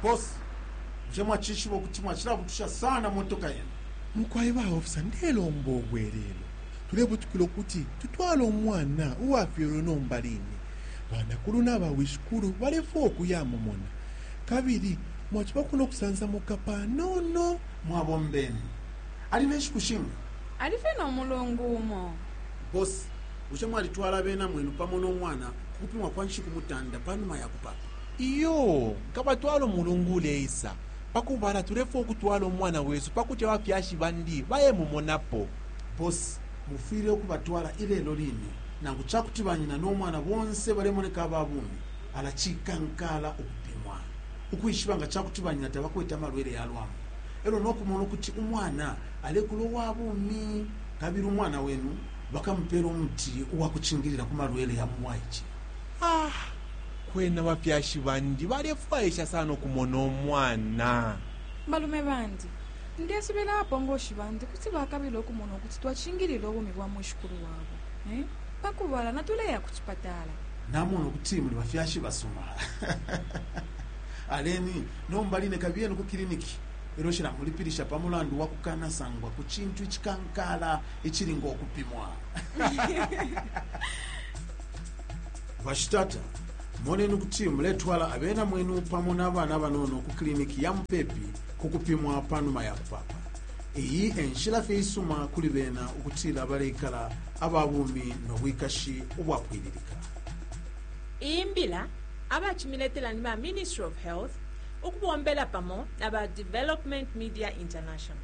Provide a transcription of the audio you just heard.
Boss, bushe mwacishiba ukuti mwacilabutusha sana motoka yenu? Mukwai ba officer ndelomba ubwelelo. Tulebutukila ukuti tutwale umwana uwafyelwe nomba line. Banakulu naba wishikulu balefwaya ukuya mumona. Kabili mwacibako nokusansamuka panono. Mwabombeni. Ali nenshiku shinga? Alifye nomulungu umo. Boss, Bushe mwalitwala abena mwenu pamo no mwana ku kupimwa kwa nshiku mutanda pa numa ya kupaapa? Iyo, nkabatwala umulungu uleisa. Pa kubala, tulefwaya ukutwala umwana wesu pa kuti abafyashi bandi bayemumonapo. Boss, mufwile ukubatwala ilelo line. Nangu ca kuti banyina no mwana bonse balemoneka aba bumi, ala cikankaala ukupimwa, ukwishiba nga ca kuti banyina tabakwete amalwele ya lwambu, e lyo no kumona ukuti umwana alekula uwa bumi kabili umwana wenu. bakamupeela umuti uwa kucingilila ku malwele ya mu bwaice. Ah kwena abafyashi bandi balefwaisha sana ukumona umwana! Balume bandi, ndesubila abapongoshi bandi kuti bakabila ukumona ukuti twacingilila ubumi bwa mwishikulu wabo. Eh? Pa kubala natuleya ku cipatala. Namona ukuti muli bafyashi basuma. Aleni, nomba line kabiyeni ku kiliniki. Lelo cilamulipilisha pa mulandu wa kukanasangwa ku cintu icikankaala icilinga ukupimwa bashitata moneni ukuti muletwala abena mwenu pamo n'abana banono ku kiliniki ya mupepi ku kupimwa pa numa ya kupapa iyi enshila fye isuma kuli bena ukutila baleikala aba bumi no bwikashi ubwapwililika iyi mbila abacimiletela ni ba ministry of health ukubombela pamo na ba development media international